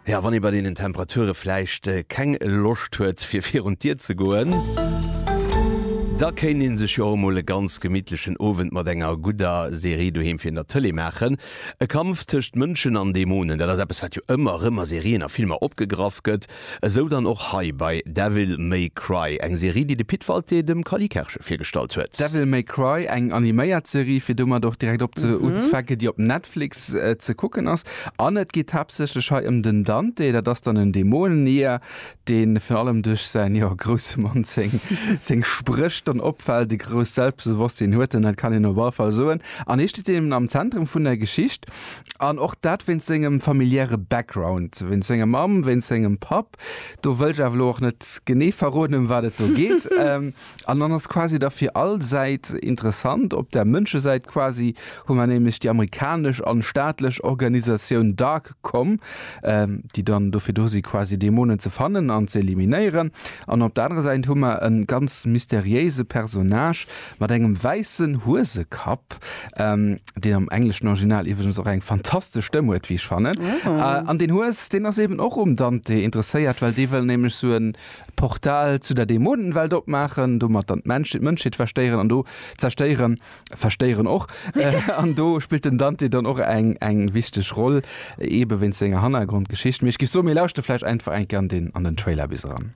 Ja, wann ee bei deenen Temperature vläicht keng Loscht huet fir virun d'Dier ze goen, da kéint ee sech jo och emol e ganz gemittlechen Owend mat enger gudder Serie doheem virun der Tëlee maachen. E Kampf tëscht Mënschen an Dämonen, dat ass eppes wat jo ëmmer erëm a Serien a Filmer opgegraff gëtt. Esou dann och hei bei Devil May Cry, eng Serie déi de Pit Walté dem Cally Kerge virgestallt huet. Devil May Cry, eng animéiert Serie, fir domat och direkt op ze unzfänken, déi op Netflix ze kucken ass. An et geet haaptsächlech hei ëm den Dante, dat ass dann en Dämonenier, dee virun allem duerch säin, jo, grousse Mann, seng Spréch dann opfält, e grousst Selbstbewosstsinn huet en, dat kann een op all Fall soen, an hie steet eben am Zentrum vun der Geschicht. An och dat wéinst sengem familiäre Background, wéinst senger Mamm, wéinst sengem Papp. Do wëll ech awer elo och net genee verroden, ëm wat et do geet. An dann ass quasi da fir all Säit interessant. Op der Mënschesäit quasi hu mer nämlech déi amerikanesch an staatlech Organisatioun dark com, déi dann dofir do si quasi Dämonen ze fannen an ze eliminéieren. An op der anerer Säit hu mer e ganz mysteriéise Personnage, Mat engem wäissen Huesekapp, deen am engleschen Original iwwregens och eng fantastesch Stëmm huet, wéi ech fannen. An deen Hues, deen ass eben och um Dante interesséiert, well dee wëll nämlech sou e Portal zu der Dämonenwelt opmaachen, domat dann d'Mënschheet verstéieren an do, zerstéieren, verstéieren och. An do spillt den Dante dann och eng wichteg Roll, eebe wéinst senger Hannergrondgeschicht. Mee ech géif soen, mir lauschte vläicht einfach eng Kéier an den Trailer bis eran.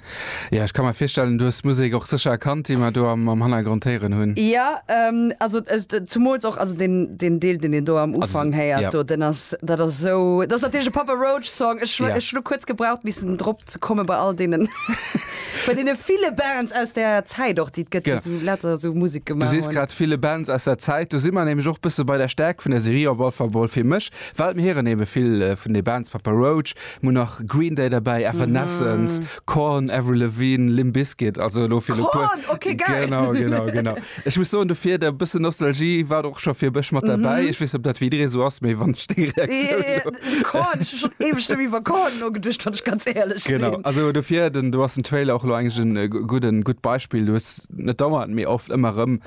Ja, ech ka mer virstellen, du hues d'Musek och sécher erkannt, déi mer do am Hannergrond héieren hunn. Ja, also zumools och, also deen Deel, deen een do am Ufank héiert do, deen ass, dat ass esou, dat ass natierlech e Papa Roach-Song. Ech hunn elo kuerz gebraucht, missen drop ze kommen, bei all deenen, bei deene ville Bands aus där Zäit och, déi et gëtt, déi later esou Musek gemaach hunn. Du sees grad ville Bands aus där Zäit, do si mer nämlech och bësse bei der Stäerkt vun der Serie, op alle Fall emol fir mech, well mir héieren ebe vill vun de Bands, Papa Roach, Mol nach Green Day derbäi, Evanescence, Korn, Avril Lavigne, Limp Bizkit, also elo fir elo puer. Korn, okay, geil! Genau, genau, genau. Ech muss soen, dofir der bëssen Nostalgie war och scho fir e bësch mat derbäi. Ech weess net, ob dat fir jidderee sou ass, mee wann ech deng Reaktioun elo. Eeh, Korn, ech hu schonn éiweg net méi iwwer Korn nogeduecht, wann ech ganz éierlech sinn. Genau, also dofir, den, do ass den Trailer och elo eigentlech en gudden, en gutt Beispill. Du hues net dauernd, mee oft ëmmer erëm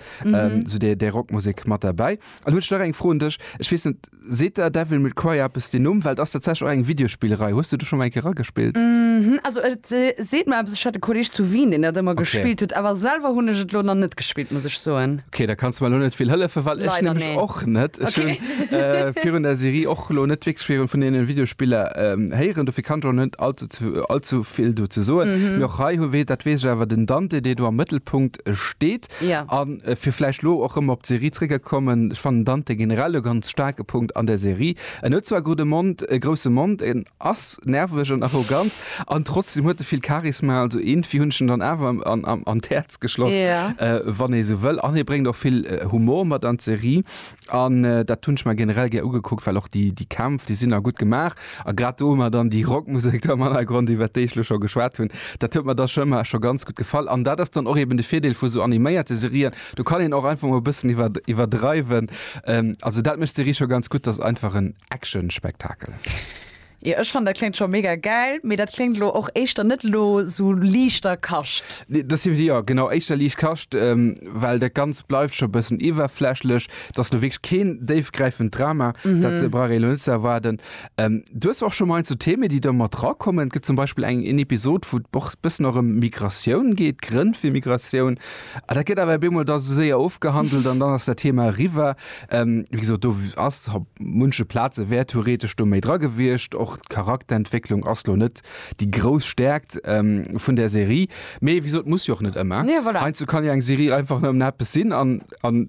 esou déi, déi Rockmusek mat derbäi. An hu ech nach eng Fro un dech, ech weess net, seet der Devil May Cry eppes den Numm? Well et ass tatsächlech och eng Videospillerei. Hues du do schonn mol eng Kéier eragespillt? Also et seet mer eppes, ech hat e Kolleeg zu Wien deen dat ëmmer gespillt huet, awer selwer hunn ech et elo nach net gespillt, muss ech soen. Ok, da kanns du mer elo net vill hëllefen, well ech nämlech och net. Ech hu virun der Serie och elo net wierklech vill vun deene Videospiller héieren, dofir kann ech och net allzu vill dozou soen. Mee och hei, dat weess ech awer, den Dante dee do am Mëttelpunkt steet. Ja. A fir vläicht elo och erëm op d'Serie zréckgekommen, ech fannen Dante generell e ganz staarke Punkt an der Serie. En huet zwar gudde Mond, e grousse Mond, en ass nerveg an arrogant an trotzdem huet e vill Charisma. Also eengfwi hunn ech en dann awer an d'Häerz geschloss, Ja. wann ee sou wëll. An hie bréngt och vill Humor mat an d'Serie. An dat hunn ech mer generell gär ugekuckt, well och déi, déi Kämpf, déi sinn a gutt gemaach. A grad do hu mer dann déi Rockmusek do am Hannergrond, iwwert déi ech elo scho geschwat hunn, dat huet mer da scho ëmmer scho ganz gutt gefall. An dat ass dann och eben de Virdeel vu sou animéierte Serien, do kann een och einfach mol e bëssen iwwer, iwwerdreiwen. Also dat mécht d'Serie scho ganz gutt, 't ass einfach en Action-Spektakel. Jo ech fannen dat kléngt scho mega gäil, mee dat kléngt elo och éischter net elo sou liichter Kascht. Nee dat si jo genau éischter liicht Kascht, well dat ganzt bleift scho e bëssen iwwerflächlech. Et ass elo wierklech keen déifgräifend Drama, dat brauch ee elo net ze erwaarden. Du hues och scho mol eent sou Themen déi do mat dra kommen. Et gëtt zum Beispill eng een Episod wou et och e bëssen och ëm Migratioun geet, Grënn fir Migratioun. Dat gëtt awer op eemol da sou séier ofgehandelt an dann ass dat Thema eriwwer. Ähm, wéi gesot, do ass op munche Plaze wär theoretesch do méi dra gewiescht. Och d'Charakterentwécklung ass lo net déi grouss Stäerkt ähm, vun der Serie. Mee wéi gesot, muss jo och net ëmmer. Nee, voilà. Heiansdo kann jo eng Serie einfach nëmmen eppes sinn an, an